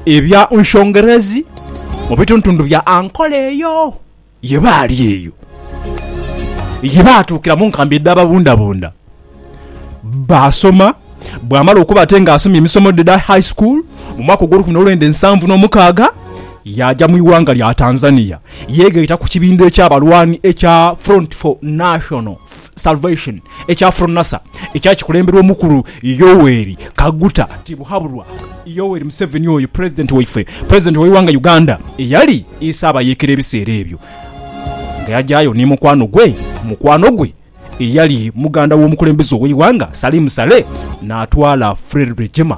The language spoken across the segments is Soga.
Ebya Nshongerezi mu bituntundu bya Ankole eyo ye baali eyo ye baatuukira mu nkambi edh'ababundabunda. Baasoma, bwamala okuba ate ng'asomye emisomo edha high school mu mwaka ogw'olukumi n'olwenda ensanvu n'omukaaga, yaaja mu ighanga lya Tanzania yeegaita ku kibinho eky'abalwani ekya Front for National. Salvation ekya Fronasa ekyali kikulemberwa omukulu Yoweri Kaguta Tibuhaburwa. Yoweri Museveni oyo pulezidenti waife, pulezidenti w'eighanga Uganda eyali Isaabayeekera ebiseera ebyo nga yagyayo ni mukwano gwe mukwano gwe eyali muganda w'omukulembeze ow'eighanga Salim Saleh n'atwala Fred Rwegyema.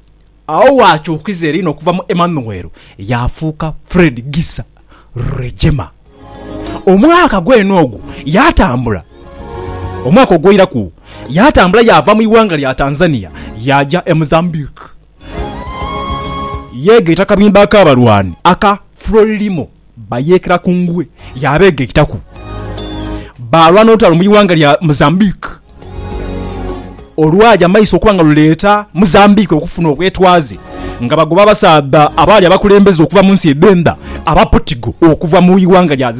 Agho waakyukiza eri n'okuva mu Emmanuel yaafuuka Fred Gisa Rwejema. Omwaka gwene ogwo yaatambula. Omwaka ogw'oiraku yaatambula yaava mu ighanga lya Tanzania yaaja e Mozambique. Yeegaita akabinba ak'abalwani aka Frelimo. Bayeekera ku ngwe yaabeegaitaku, baalwa n'olutalo mu ighanga lya Mozambique olwaja mu maiso okuba nga luleeta Mozambique okufuna obwetwaze nga bagoba abasaadha abaali abakulembeze okuva mu nsi edh'endha Abaportigo okuva mu ighanga lya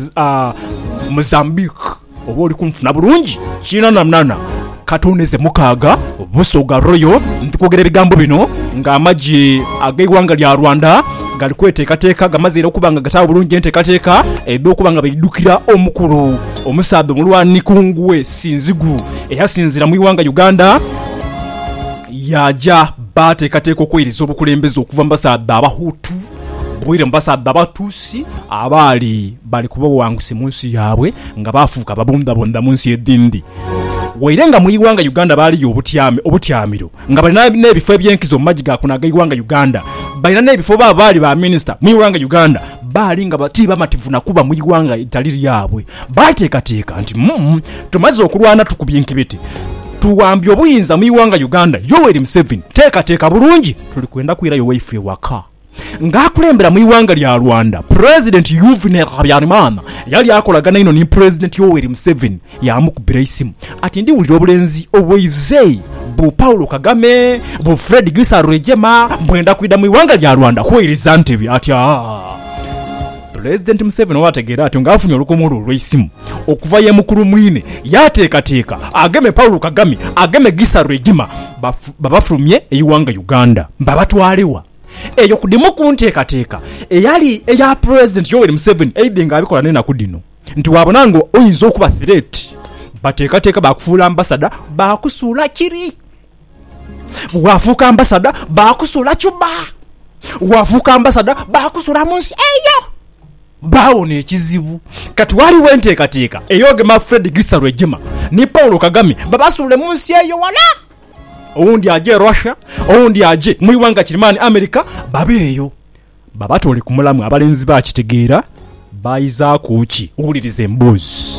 Mozambique. oba oli kunfuna bulungi? Kinananana katoneze mukaaga Busoga Royal ndi kwogera ebigambo bino nga amagye ag'eighanga lya Rwanda gali kweteekateeka gamaze era okuba nga gataagho bulungi enteekateeka edh'okuba nga baidhukira omukulu omusaadha omulwani Kungue Sinzigu eyasinziira mu ighanga Uganda yaaja baateekateeka okweiriza obukulembeze okuva mu basaadha Abahutu baire mu basaadha Abatusi abaali Bali kuba bawanguse mu nsi yaabwe nga baafuuka babundhabundha mu nsi edhindi. Waire nga mu ighanga Uganda baaliyo obutyame, obutyamiro, nga balina n'ebifo eby'enkizo mu magi ga kuno ag'eighanga Uganda. Balina n'ebifo baabo baali ba minisita mu ighanga Uganda. Baali nga ti bamativu na kuba mu ighanga eritali lyabwe. Baateekateeka nti, Umm, tumaze okulwana tukubye enkibete, tuwambye obuyinza mu ighanga Uganda, Yoweri Museveni, teekateeka bulungi, tuli kwenda kwirayo waife ewaka. Nga akulembera mu ighanga lya Rwanda, Pulezidenti Yuvenel Habyarimana yali akolagana inho ni Pulezidenti Yoweri Museveni yaamukubira eisimu ati ndiwulira obulenzi obweize bu Paul Kagame, bu Fred Gisa Rwigema bwenda kwidha mu ighanga lya Rwanda kweiriza ntebe ati aah. Pulezidenti Museveni olwategeera atyo ng'afunye olukomo lwe olw'eisimu okuva ye mukulu mwine, yaateekateeka ageme Paul Kagame ageme Gisa Regima babafulumye eighanga Uganda. Babatwale wa? Eyo ku dhimu ku nteekateeka eyali eya Pulezidenti Yoweri Museveni aidhi ng'abikola n'enaku dhino nti bwabona ng'oyinza okuba thireeti, bateekateeka baakufuula ambasada baakusuula kiri. Waafuuka ambasadha baakusuula Cuba. Waafuuka ambasadha baakusuula mu nsi eyo. Baawona ekizibu. Kati ghaligho enteekateeka ey'ogema Fred Gisa Rwejema ni Paul Kagame babasuule mu nsi eyo wala. Owundi aje Russia, owundi aje mu ighanga kirimaani America, babe eyo. Babatoole ku mulamwa abalenzi baakitegeera. Baayizaaku ki? Wuliriza emboozi.